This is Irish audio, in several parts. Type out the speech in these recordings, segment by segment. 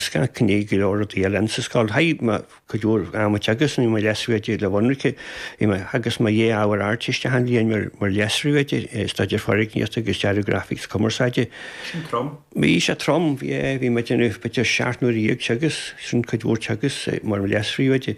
Scaip mé go leor rudaí eile ins an scoil chaith mé cuid mhór ama ag teagasc, bhí mo leas-phríomhoide le bheith ionraic, theagasc mé mo dhá ábhar Ardteiste achan bhliain, mar leas-phríomhoide, staidéar foirgníochta agus dearadh grafaic is cumarsáide. Sin trom. Bhí sé trom, bhí, bhí mé ag déanamh b'fhéidir seacht n-uaire dhéag teagasc, sin cuid mhór teagaisc, mar leas-phríomhoide.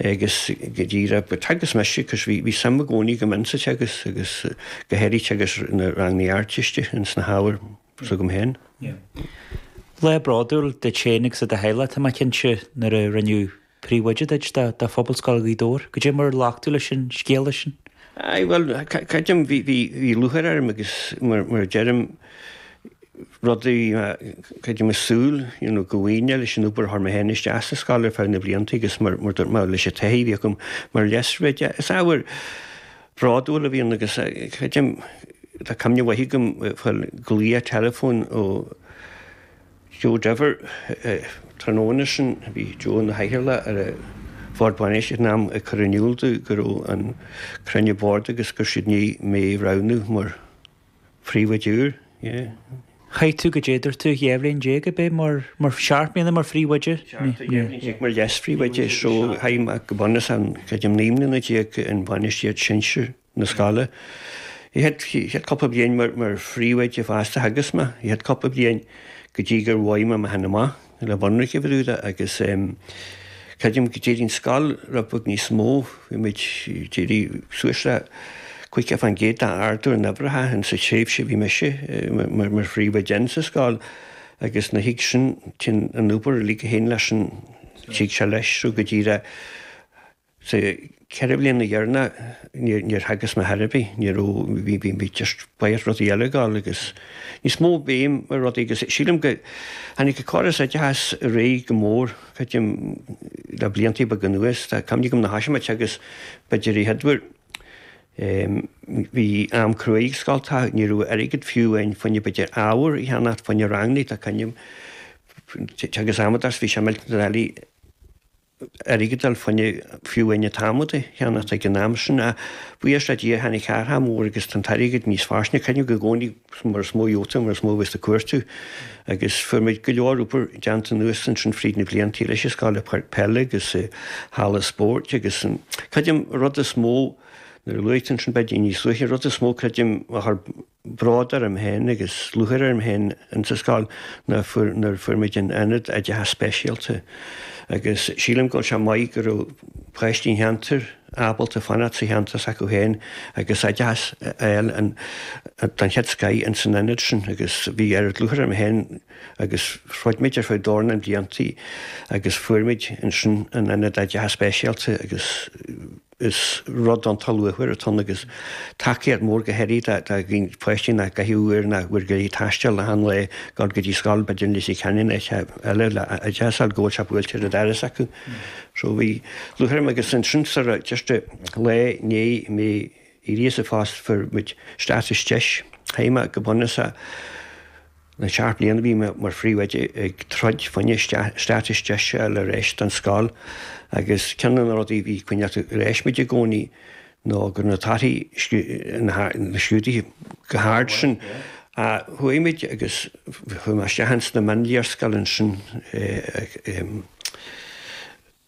agus go dtí raibh go teagasc mise, cos bhí bhí suim i gcónaí agam in sa teagasc agus go háirithe teagasc na rangannaí Ardteiste in sna hábhair s'agam féin. Lá bródúil duit féin agus do do theaghlach, tá mé cinnte, nuair a rinneadh príomhoide duit do do Phobalscoil Ghaoth Dobhair. Cad é mar a ghlac tú leis an scéala sin? Aye, bhuel, creidim, bhí bhí bhí lúcháir orm agus mar mar a deirim, rudaí, creidimse, súil you know go bhfaighinn é leis an obair a chuir mé féin isteach sa scoil ar feadh na blianta agus mar mar dúirt mé leis an taithí a bhí agam mar leas-phríomhoide, is ábhar bródúil a bhí ann agus creidim tá cuimhne mhaith agam faoin ghlaoch teileafóin ó Joe Diver tráthnóna sin, bhí Joe ina chathaoirleach ar an Bhord Bainistíochta ag an am, ag cur in iúl dom go raibh an cruinniú boird agus go raibh siad i ndiaidh mé a roghnú mar. phríomhoide úr, yeah. Chaith tú, cad é dúirt tú, dhá bhliain déag ab é mar, mar seacht mbliana mar phríomhoide? Seacht, tá dhá bhliain déag mar leas-phríomhoide, so chaith mé, go bunúsach, creidim naoi mbliana déag in bainistíocht shinsir na scoile. An chéad, an chéad chúpla bliain mar, mar phríomhoide fosta, theagasc mé, an chéad chúpla bliain go dtí gur bhain mé mé féin amach. Le bheith ionraic, a bhrúide, agus creidim go d'éirigh an scoil rud beag níos mó, bhí muid ag éirí suas le 50 fán gcéad d'ardú in uimhreacha ins an tréimhse a bhí mise mar phríomhoide ins an scoil agus nuair a thig sin, téann an obair uilig a théann leis sin, tig sé leis, so go díreach. Sa cheithre bhliana dheireanach níor theagasc mé ar chor ar bith, ní raibh, bhí, bhí mé just, barraíocht rudaí eile ag gabháil agus níos mó béim ar rudaí agus sílim go, tháinig an córas oideachais ar aghaidh go mór, creidim, le blianta beaga anuas, tá cuimhne agam nuair a thosaigh mé ag teagasc b'fhéidir a chéaduair, em, bhí am cruaidh ag scoilteacha, ní raibh airgead fiú ann fá choinne b'fhéidir ábhar a cheannacht, fá choinne rangannaí, tá cuimhne agam, teagasc adhmaid is bhí sé millteanach doiligh, airgead a fháil fá choinne fiú fá choinne adhmad a cheannacht ag an am sin, ach buíochas le Dia tháinig athrach mór agus tá an t-airgead níos fairsinge. Creidim i gcónaí mar is mó a gheobhaidh tú mar is mó a bheas ag cuartú agus fuair muid go leor obair déanta anuas ansin fríd na blianta leis an scoil, páirc peile agus halla spóirt agus an creidim rud is mó nuair a luaigh tú ansin b'fhéidir níos luaithe an rud is mó creidim a bród orm féin agus lúcháir orm féin ins an scoil nuair fuair muid an Aonad Oideachais Speisialta agus sílim go bhfuil sé maith go raibh páistí an cheantair ábalta fanacht sa cheantar s'acu féin agus oideachas a fháil don chéad scoith ins an Aonad sin agus bhí oiread lúcháir orm féin agus throid muid ar feadh dornán blianta agus fuair muid ansin an Aonad Oideachais Speisialta agus is rud iontach luachmhar atá ann agus tacaíocht mhór go háirithe do dhaoine páistí nach gcaithfidh uair ná uair go leith ag taisteal le haon lae gar go dtí scoil, b'fhéidir i Leitir Ceanainn nó áit eile is deas a fháil go bhfuil sé buailte ar an doras acu. So bhí lúcháir orm agus ansin mar a deirtear, dhá lá i ndiaidh mé éirí as an phost fuair muid stádas DEIS, chaith mé go bunúsach. Le seacht mbliana bhí mé mar phríomhoide ag troid fá choinne stádas DEIS ar ais don scoil agus ceann de na rudaí a bhí ag coinneáil ar ais muid i gcónaí ná go raibh na torthaí scrúdaithe chomh hard sin. Chuaigh muid agus chuaigh mé isteach ins na mionléarscáileanna sin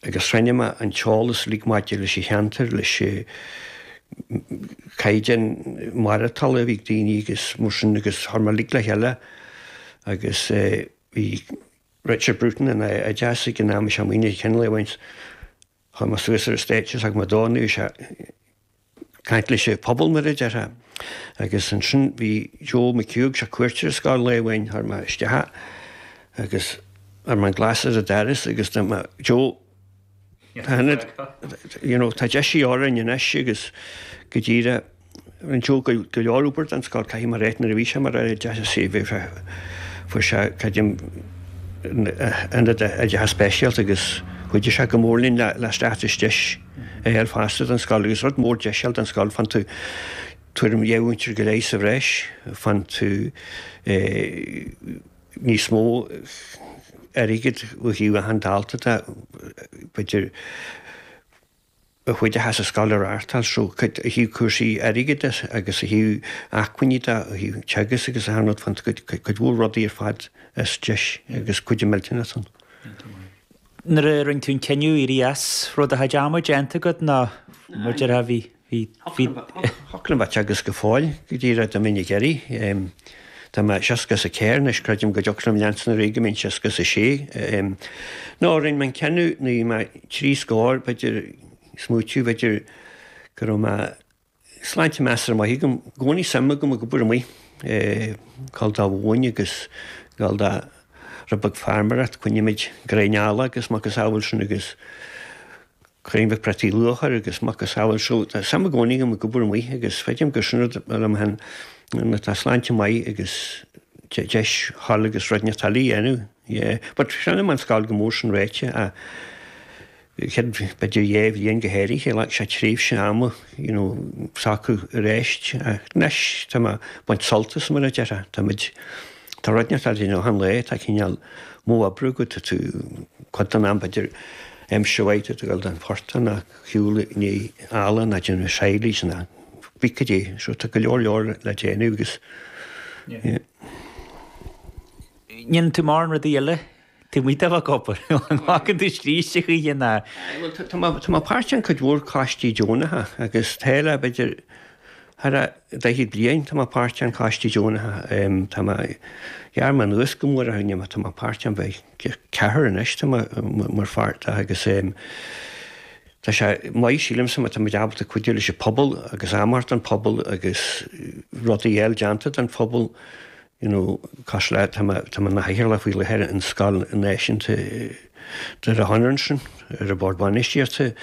agus chruinnigh mé an t-eolas uilig maidir leis an cheantar, leis an gcaighdeán maireachtála a bhí ag daoine agus mar sin agus chuir mé uilig le chéile agus bhí Richard Bruton san oideachas ag an am, is i mo chuimhne chinn lá amháin, chuaigh mé suas ar an stáitse is thug mé dó, anois, caint leis an phobal, mar a déarfá. Agus ansin bhí Joe McHugh, é ar cuairt ar an scoil lá amháin, tharraing mé isteach é agus chuir mé an glas ar an doras agus dúirt mé Joe tá ionad, you know, tá DEIS de dhíth orainn anois agus go díreach rinne Joe go go leor obair den scoth, caithfidh mé a rá, nuair a bhí sé mar Aire Oideachais is bhí sé, fuair sé creidim ionad oideachais speisialta agus chuidigh sé go mór linn le le stádas DEIS. A fháil fosta don scoil, agus rud mór DEIS a fháil don scoil, faigheann tú tuairim dhá mhúinteoir go leith sa bhreis, faigheann tú níos mó airgid ó thaobh achan dalta de, b'fhéidir a chuidíos an scoil a reáchtáil, so cuid ó thaobh cúrsaí airgid de agus ó thaobh acmhainní de, ó thaobh teagasc agus achan rud, faigheann tú cuid mhór rudaí ar fad as DEIS agus cuidiú millteanach ann. Nuair a rinne tú an cinneadh éirí as, an raibh do dhóthain déanta agat nó mar a déarfá, bhí, bhí, bhí. Thiocfadh liom a bheith ag teagasc go fóill dá mba mhian liom é. Tá mé seasca is a ceathair anois, creidim go dtiocfadh liom leanstan ar aghaidh go mbeinn seasca is a sé. Nó rinne mé an cinneadh nuair a bhí mé trí scór, b'fhéidir, smaoitiú, b'fhéidir go raibh mé. Sláinte measartha maith agam. Gcónaí suim agam ag obair amuigh, gabháil do mhóin agus gabháil do rud beag farmaireacht, coinnímid gráinnín eallaigh agus macasamhail sin agus gráinnín beag prátaí luatha agus macasamhail so tá suim i gcónaí agam ag obair amuigh agus feicim gur sin rud a liom féin nuair atá sláinte maith agus deis thall agus rudaí na tailí a dhéanamh. But chronaigh mé an scoil go mór sin ráite. céad b'fhéidir dhá bhliain go háirithe, ghlac sé tréimhse ama you know socrú aríst ach anois tá mé baint sult as mar a déarfá, tá muid, tá rud inteacht le déanamh achan lá, tá cineál modh oibre agat, tá tú cuid den am b'fhéidir aimsir mhaith tú ag dul don phortach ná ag siúl i ndiaidh eallaigh ná déanamh silage ná cibé cad é so tá go leor leor le déanamh agus yeah. ndéanann tú mórán rudaí eile. Taobh amuigh de bhac obair, an bhfaigheann tú scríste choíche ná? Aye, bhuel, tá mé, tá mé páirteach in cuid mhór coistí deonacha agus tá le, b'fhéidir, thar a, daichead bliain tá mé páirteach in coistí deonacha. Em, tá mé, ghearr mé anuas go mór a choinne mé, tá mé páirteach in b'fhéidir deich, ceathrar anois tá mé, mar pháirt de agus em, tá sé maith, sílimse, má tá muid ábalta cuidiú leis an phobal agus am a thabhairt don phobal agus rudaí a fháil déanta don phobal, you know cosúil le tá mé i mo chathaoirleach faoi láthair in scoil náisiúnta Doire Chonaire ansin ar an Bhord Bainistíochta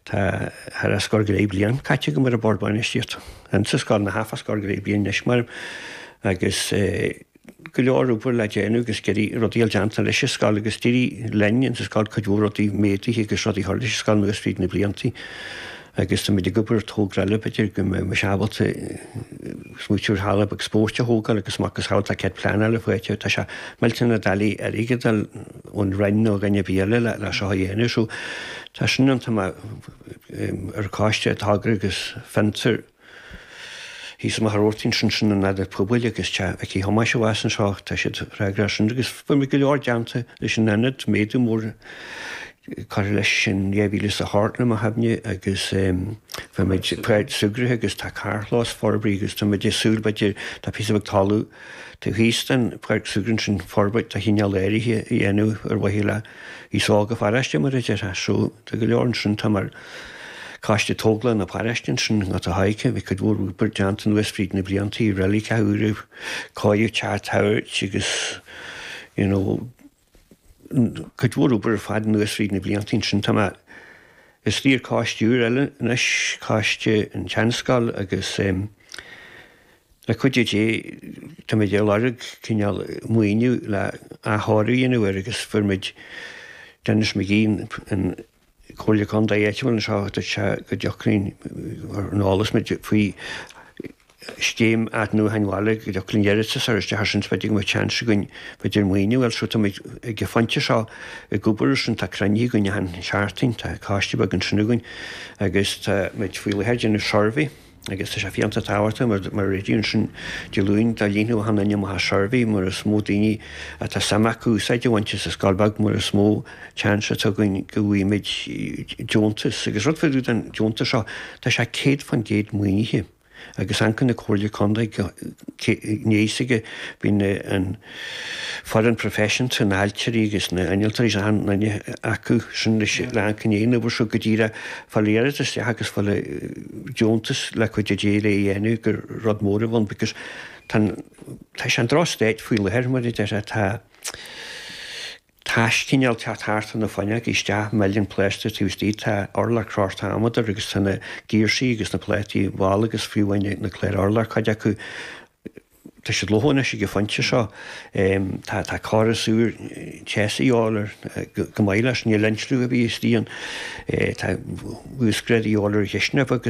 tá thar a scór go leith bliain caite agam ar an Bhord Bainistíochta and sa scoil ná thar a scór go leith bliain anois measaim agus go leor obair le déanamh agus ag iarraidh rudaí a fháil déanta leis an scoil agus d'éirigh linn in sa scoil cuid mhór rudaí méaduithe agus rudaí a chur leis an scoil nuas fríd na blianta Agus tá muid ag obair ar thogra eile, b'fhéidir go mbeimis ábalta smaoiteamh ar halla beag spóirt a thógáil agus a mhacasamhail tá cead pleanála faighte. Tá sé millteanach doiligh airgead a fháil ón Roinn nó dhuine ar bith eile leis seo a dhéanamh so tá sin ann, tá mé ar an choiste Togra agus Fiontar. Thíos i Machaire Rabhartaigh ansin san Ionad Pobail agus Te' aici Thomáis abhus anseo, tá siad freagrach as sin agus fuair muid go leor déanta leis an Ionad, méadú mór curtha leis in 2000 is a ceathair i mo chuimhne agus fuair muid páirc súgartha agus tá carrchlós forbraithe agus tá muid ag súil, b'fhéidir, tá píosa beag talamh taobh thíos den pháirc súgartha ansin forbairt de chineál áirithe a dhéanamh ar mhaithe le aos óg an pharáiste mar a déarfá, so tá go leor ansin, tá mé ar. Coiste Tógála na paráiste ansin, Gort a' Choirce, bhí cuid mhór obair déanta anuas fríd na blianta, reiligeacha úra, cóiríodh teach an tsagairt agus you know cuid mhór obair ar fad anuas fríd na blianta ansin. Tá mé ar ais ar choiste úr eile anois, Coiste an tSeanscoil agus ehm le cuidiú Dé tá muid ag lorg cineál maoiniú le athchóiriú a dhéanamh air agus fuair muid Denis McGee an Comhairle Contae áitiúil anseo duit go dtiocfainn ar an eolas muid faoi scéim athnuachain bhaile go dtiocfadh linn iarratas a chur isteach air sin b'fhéidir go mbeadh seans againn b'fhéidir maoiniú a fháil so tá muid ag an phointe seo ag obair ar sin tá cruinniú againn achan seachtain tá coiste beag ansin againn agus tá muid faoi láthair ag déanamh suirbhé agus tá sé iontach tábhachtach mar réidh ansin Dé Luain dá líonfadh achan nduine amach an suirbhé mar is mó daoine atá suim acu úsáid a bhaint as an scoil bheag mar is mó seans atá againn go bhfaighimid deontas agus rud fá dtaobh den deontas seo tá sé 100% maoinithe agus ancaire na Comhairle Contae gné is aige bhí an Foireann professional na hailtirí agus na hinnealtóirí is ann linne acu sin leis an rang cinneadh an uimhir seo go dtí rá fáil iarratas isteach agus fáil deontas le cuidiú Dé lena dhéanamh gur rud mór a bhun because tá an tá sé i ndroch state faoi láthair mar a déarfá tá taisleach ag teacht thart ó na fuinneoga isteach milleann plástar taobh istigh tá urlár crochta adhmaid agus tá na giarsaí agus na plátaí balla agus faoi bhun na cláir urláir cuid acu Tá siad lofa anois ag an phointe seo. Tá córas úr teasa a dhíobháil air chomh maith leis, níl insliú ar bith istigh ann. Tá uasghrádú a dhíobháil ar an chisteanach bheag,